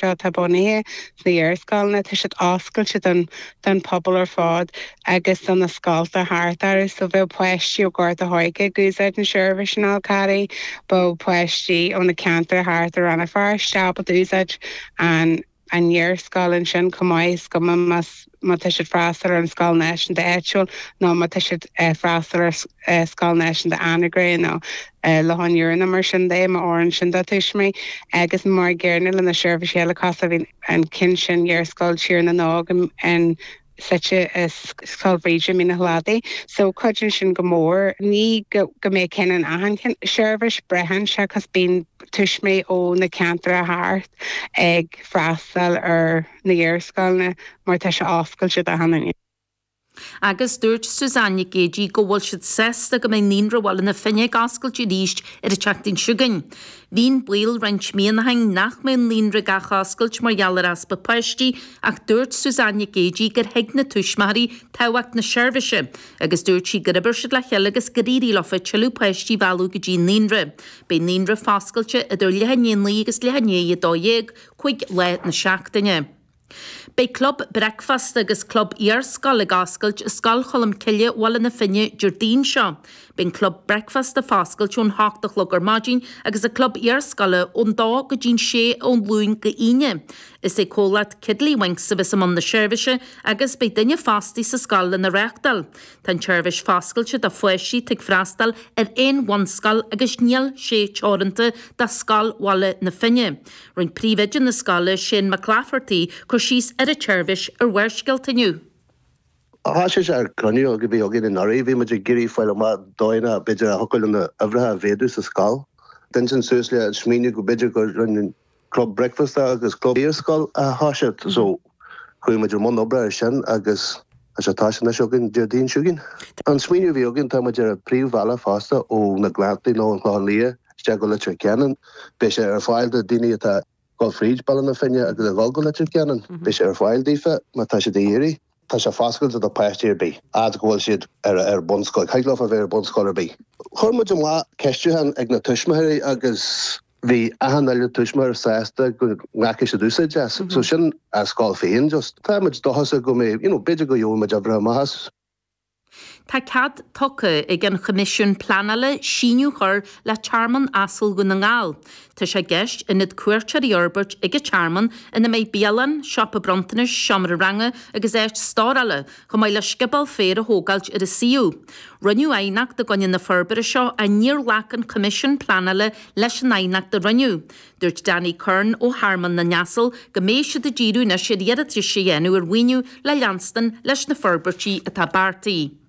seo atá bunaithe sna iar-scoileanna, tá siad oscailte don don phobal ar fad agus do na scoltacha thart orthu. So bheadh páistí ó Ghort an Choirce ag úsáid an seirbhís in Anagaire, bheadh páistí ó na ceantair thart i Ranna Feirste ábalta ag úsáid an an iar-scoil ansin chomh maith is go mbeadh más má tá siad ag freastal ar an scoil náisiúnta áitiúil nó má tá siad ag freastal ar Scoil Náisiúnta Anagaire nó Loch an Iúir nó mar sin de, má oireann sin do tuismí, agus mar an gcéanna le na seirbhísí eile cosúil le an ceann sin Iarscoil Thír na nÓg ansin suite i Scoil Bhríde i Mín a Chladaigh so cuidíonn sin go mór. Ní go mbeidh ceann in achan seirbhís, braitheann sé 'cause bíonn tuismí ó na ceantair thart ag freastal ar. na hiarscoileanna mar tá sé oscailte d'achan duine. Agus dúirt Suzanne Nic Géidigh go bhfuil siad sásta go mbeidh Naíonra Bhaile na Finne ag oscailt arís ar an tseachtain seo chugainn. Bhí an baol roinnt míonna ó shin nach mbeadh an Naíonra ag athoscailt mar gheall ar easpa páistí ach dúirt Suzanne Nic Géidigh gur thuig na tuismitheoirí tábhacht na seirbhíse agus dúirt sí gur oibir siad le chéile agus gur éirigh leofa tuilleadh páistí a mhealladh go dtí an Naíonra. Beidh an Naíonra foscailte idir leath i ndiaidh a naoi agus leath i ndiaidh a dó dhéag, cúig lá na seachtaine. Beidh Club Bricfeasta agus Club Iarscoile ag oscailt i Scoil Cholm Cille Bhaile na Finne Déardaoin seo. Beidh an Club Bricfeasta foscailte ón hocht a chlog ar maidin agus an Club Iarscoile ón dó go dtí'n sé ón Luan go hAoine. Is é Comhlacht Tiddlywinks a bheas i mbun na seirbhíse agus beidh duine fostaí sa scoil lena reachtáil. Tá an tseirbhís foscailte do pháistí atá ag freastal ar aon bhunscoil agus níl sé teoranta do Scoil Bhaile na Finne. Rinn Príomhoide na Scoile, Shane Mac Laifeartaigh cur síos ar an tseirbhís ar Bharrscéalta inniu. Tháinig sé as chruinniú a bhí againn anuraidh, bhí muid ag iarraidh fáil amach dóigheanna b'fhéidir a thiocfadh linn na huimhreacha a mhéadú sa scoil. Tháinig ansin suas le an smaoineamh go mb'fhéidir go raibh club bricfeasta agus club iar-scoile a thoiseacht. Chuaigh muid i mbun oibre air sin agus tá sé, tá sé anois againn Déardaoin seo chugainn. An smaoineamh a bhí againn, tá muid ar an bpríomhbhealach fosta ó na Gleanntaí nó an Clochán Liath isteach go Leitir Ceanainn. Beidh sé ar fáil do dhaoine atá ag dul fríd Baile na Finne agus ag dhul go Leitir Ceanainn. Beidh sé ar fáil daofa má tá siad ag iarraidh. Tá sé foscailte do páistí ar bith, fhad is go bhfuil siad ar bunscoil. Thig leofa bheith ar bunscoil ar bith. Chuir muid amach ceistiúcháin ag na tuismitheoirí agus. bhí achan uile tuismitheoir sásta go ndéanfadh siad úsáid as. So sin ár scoil féin just. Táimid dóchasach go mbeidh, you know, b'fhéidir go bhfaighimid uimhreacha maith as. Tá cead tugtha ag an Choimisiún Pleanála síneadh chur le Tearmann Asal Dhún na nGall. Tá sé i gceist ionad cuairteoirí a fhorbairt ag an tearmann ina mbeidh bialann, siopa bronntanais, seomra ranga agus áit stórála chomh maith le scioból féir a thógáilt ar an suíomh. Rinneadh aighneacht i gcoinne na forbartha seo ach níor ghlac an Coimisiún Pleanála leis an aighneacht a rinneadh. Dúirt Danny Curran ó Thearmann na nAsal go mbeidh siad ag díriú anois ar iarratais a dhéanamh ar mhaoiniú le leanstan leis na forbairtí atá beartaithe.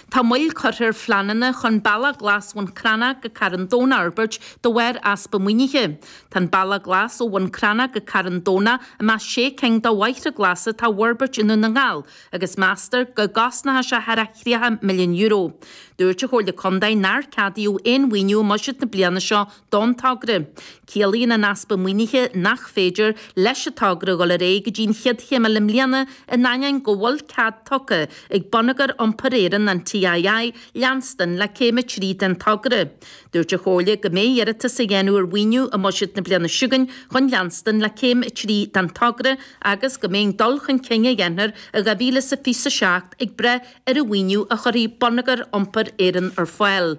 Tá moill curtha ar phleananna chun bealach Ghlas Bhun Crannach go Carn Donn a fhorbairt de bharr easpa maoinithe. Tá an Balla Glas ó Bhun Cranncha go Carn Domhnach i measc sé cinn de bhóithre glasa atá á bhforbairt i nDún na nGall agus meastar go gcosnóidh sé thar €30 milliún. Dúirt an Chomhairle Contae nár ceadaíodh aon mhaoiniú i mbuiséad na bliana seo don togra. Ciallaíonn an easpa maoinithe nach féidir leis an togra dul ar aghaidh go dtí an chéad chéim eile i mbliana in ainneoin go bhfuil cead tugtha ag Bonneagar Iompair Éireann, an TII, leanstan le céim a trí den togra. Dúirt an Chomhairle go mbeidh iarratas á dhéanamh ar mhaoiniú i mbuiséad na bliana seo chugainn chun leanstan le céim a trí den togra agus go mbeidh an dul chun cinn a dhéanfar i 2027 ag brath ar an mhaoiniú a chuirfidh Bonneagar Iompair Éireann ar fáil.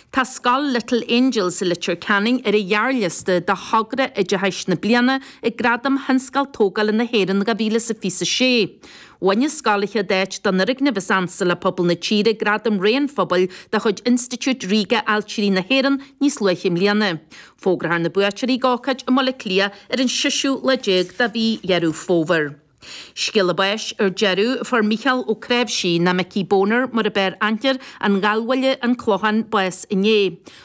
Tá scoil Little Angels i Leitir Ceanainn ar an ghearrliosta do Thogra Oideachais na Bliana ag Gradaim Thionscail Tógála na hÉireann 2026. Bhain an scoil an tríú háit don fhoirgneamh is ansa le pobal na tíre Gradam Rogha an Phobail de chuid Institiúid Ríoga Ailtirí na hÉireann níos luaithe i mbliana. Fógrófar na buaiteoirí ag ócáid i mBaile Átha Cliath ar an seisiú lá déag de mhí Dheireadh Fómhair. Scéala báis ar deireadh, fuair Mícheál Ó Cnáimhsí, nó Mickey Boner mar a b'fhearr aithne air, An Ghallbhuaile, An Clochán, bás inné.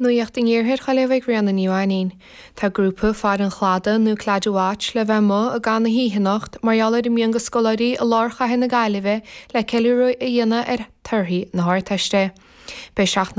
Nuacht in Iarthair Ghaillimh ag Ríona Ní Mhainín. Tá grúpa Faire an Chladaigh, nó Claddagh Watch, le bheith amuigh i gcaitheamh na hoíche anocht mar gheall ar a mbeidh de scoláirí i lár chathair na Gaillimhe le ceiliúradh a dhéanamh ar torthaí na hArdteiste. Beidh seachtain na.